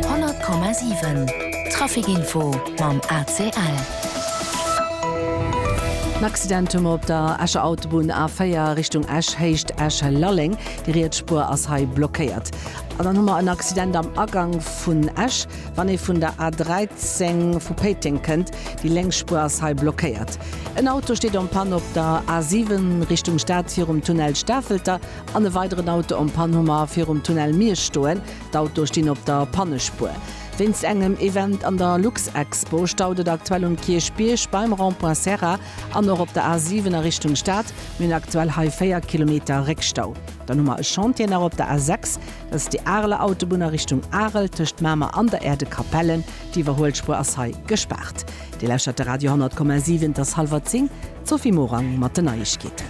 100,7 Traficinfo mam ACL. En Accident hu mer op der Escher Autobunn A4 Richtung Esch, Héicht Esch-Lalleng. Déi riets Spuer ass hei blockéiert. An dann hu mer en Accident am Agang vun Esch, wann ee vun der A13 vu Péiteng kënnt. Déi lénks Spuer ass hei blockéiert. En Auto steet en panne op der A7 Richtung Stad virum Tunnel Stafelter. An e weideren Auto en Panne hu mer virum Tunnel Miersch stoen. D'Autoe stinn op der Pannespuer. Wéinst engem Event an der Luxexpo staut et aktuell um Kierchbierg beim Rond-point Serra an och op der A7 a Richtung Stad. Mir hunn aktuell hei 4 Kilometer Réckstau. Dann hu mer e Chantier nach op der A6, dat ass déi Areler Autobunn a Richtung Arel tëscht Mamer an der Aire de Capellen. Déi Iwwerhuelspuer ass hei gespaart. Dir lauschtert de Radio 100,7, et ass hallwer 10. D'Sophie Morang mat den Neiegkeeten.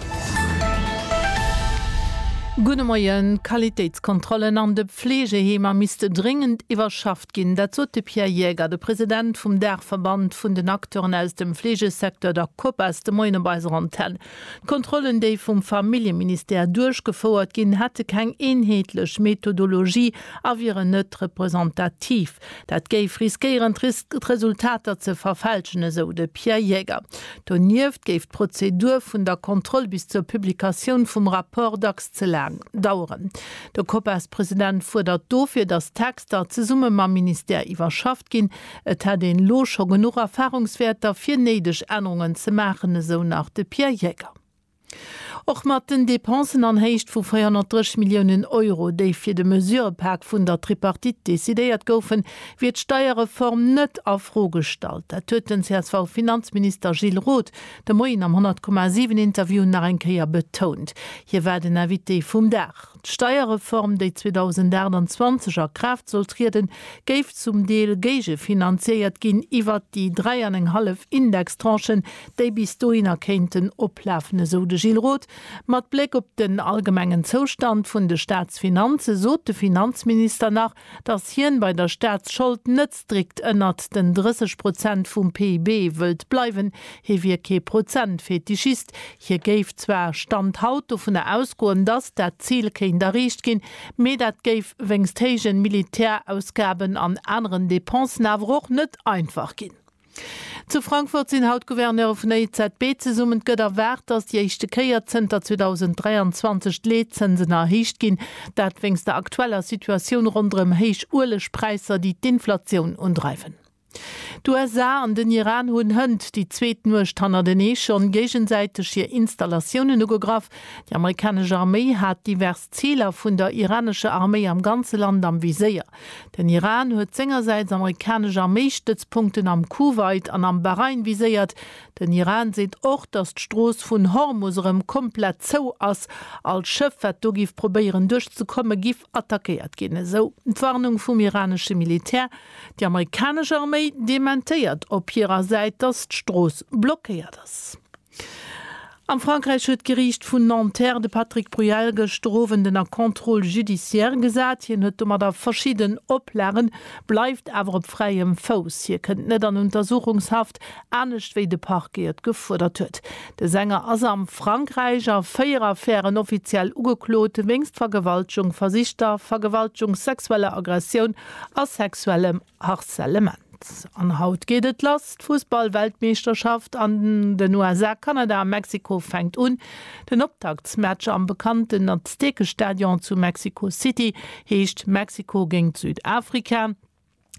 Gudde Moien. D'Qualitéitskontrollen an de Fleegeheemer misste dréngend iwwerschafft ginn. Dat sot de Pierre Jaeger, de President vum Daachverband vun den Acteuren aus dem Fleegesecteur, der Copas, de Moien op eiser Antenn. D'Kontrollen, déi vum Familljeministère duerchgefouert ginn, hätte keng eenheetlech Methodologie a wieren net representativ. Dat géif riskéieren d'Resultater ze verfälschen, esou de Pierre Jäger. Donieft géif d'Prozedur vun der Kontroll bis zur Publikatioun vum Rapport dacks ze laang daueren. De Copas-President fuerdert dofir, datt d'Texter zesumme mam Ministère iwwerschafft ginn. Et hätt een elo scho genuch Erfarungswäerter, fir néideg Ännerungen ze maachen, esou nach de Pierre Jäger. Och mat den Depensen an Héicht vu 430 Milliounen Euro, déi fir de Mesurëpak vun der Tripartite decidéiert goufen, wier d'Steierreform net a Fro gestallt. Dat huet den CSV-Finanzminister Gilles Roth de Moien am 100,7-Interview nach eng Kéier betount. Hie war den Invité vum Dag. D'Steierreform, déi 2028 a Kraaft soll trieden, géif zum Deel géigefinanziéiert ginn iwwert déi dräi an eng hallef Indextranchen, déi bis dohinner kéinten oplafen, esou de Gilles Roth. Mat Bléck op den allgemengen Zoustand vun de Staatsfinanze sot de Finanzminister nach, Datt hien bei der Staatsschold net strikt ënnert den 30 Prozent vum PIB wëllt bleiwen. Hie wier kee Prozentfetischist. Hie géif zwar, Stand haut, dovunner ausgoen, datt dat Zil kéint erreecht ginn, mee dat géif wéinst héijen Militärausgaben an aneren Dépensen awer och net einfach ginn. Zu Frankfurt sinn haut d'Gouverneure vun der EZB zesummen. Et gëtt erwaart, datt déi éischte Kéier zënter 2023 d'Leetzënsen erhéicht ginn. Dat wéinst der aktueller Situatioun ronderëm héich Uelegpräisser, déi d'Inflatioun undreiwen. D'USA an den Iran hunn hënt déi zweet Nuecht hannertenee schonn géigesäiteg hir Installatiounen ugegraff. Déi amerikanesch Arméi hat divers Ziler vun der iranescher Arméi am ganze Land am Viséier. Den Iran huet sengersäits amerikanesch Arméistëtzpunkten am Kuwait an am Bahrain viséiert. Den Iran seet och, datt d'Strooss vun Hormus erëm komplett zou ass. All Schëff, wat do giff probéieren duerch ze komme giff attackéiert ginn, esou d'Warnung vum iranesche Militär. Déi amerikanesch Arméi dementéiert op hirer Säit, datt d'Strooss blockéiert ass. Am Frankräich huet d'Geriicht vun Nanterre de Patrick Bruel gëschter Owend ënner Contrôle judiciaire gesat. Hien huet domadder verschidden Oplagen, bleift awer op fräiem Fouss. Hie kënnt net an Untersuchungshaft, anescht wéi de Parquet et gefuerdert huet. De Sänger ass am Frankräich a véier Affären offiziell ugeklot, wéinst Vergewaltegung, versichter Vergewaltegung, sexueller Aggressioun a sexuellem Harcèlement. An haut geet et lass, d'Fussballweltmeeschterschaft an den USA, Kanada a Mexiko fänkt un. Den Optaktsmatch am bekannten Aztekestadion zu Mexico City heescht Mexiko géint Südafrika.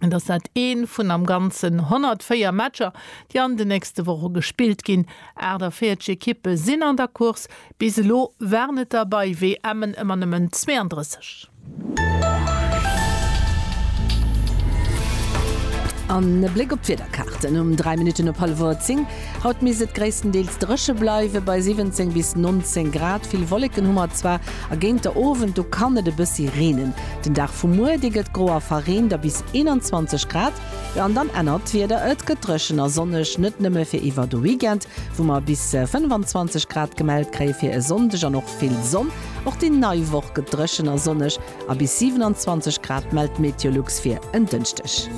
Et ass dat ee vun am Ganzen 104 Matcher, déi an den nächste Woche gespillt ginn. 48 Ekippe sinn an der Course, bis elo waren et der bei WMen ëmmer nëmmen 32. An e Bléck op d'Wiederkaarten um 3 Minutten op hallwuer 10. Haut misst et gréisstendeels dréche bleiwe bei 17 bis 19 Grad. Vill Wolleken hu mer zwar a géint der Owend do kann et e bëssi reenen. Den Dag vu muer, dee gëtt gro a verreent a bis 21 Grad. Jo, an dann ännert d'Wieder, et gëtt dréchen a sonneg, net nëmme fir iwwer de Weekend, wou mer bis 25 Grad gemellt kréie fir e Sonndeg an och Vill Sonn, och déi nei Woch gëtt dréchen a sonneg a bis 27 Grad mellt d'Meteolux fir en Dënschdeg.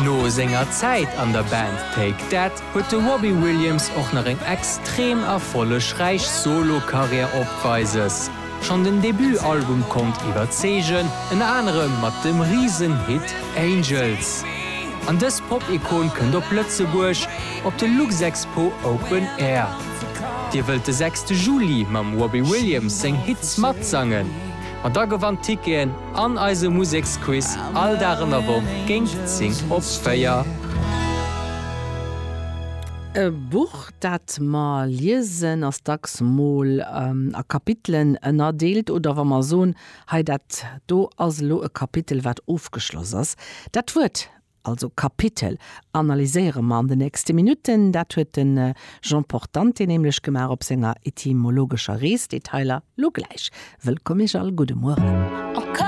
No senger Zäit an der Band Take That huet de Robbie Williams och nach eng extrem erfollegräich Solo-Karriär opweises. Schonn den Debut-Album konnt iwwerzeegen, ënner anerem mat dem Risen-Hit Angels. An dës Pop-Ikon kënnt op Lëtzebuerg op de Luxexpo Open Air. Dir wëllt de sechste Juli mam Robbie Williams seng Hits matsangen? Ma da gewannt Ticketen an eise Museksquiz all Dag an der Woch géint 10 op 4. E Buch, Dat mer liesen ass dacks mol a Kapitelen ënnerdeelt, oder wa mer soen, hei dat do ass elo e Kapitel wat ofgeschloss ass. Dat Wuert also Kapitel analyséiere mer an de nächste Minutten. Dat huet de Jean Portante nämlech gemaach op senger etymologescher Rees. Detailer lo gläich. Wëllkomm iech all, gudde Mueren.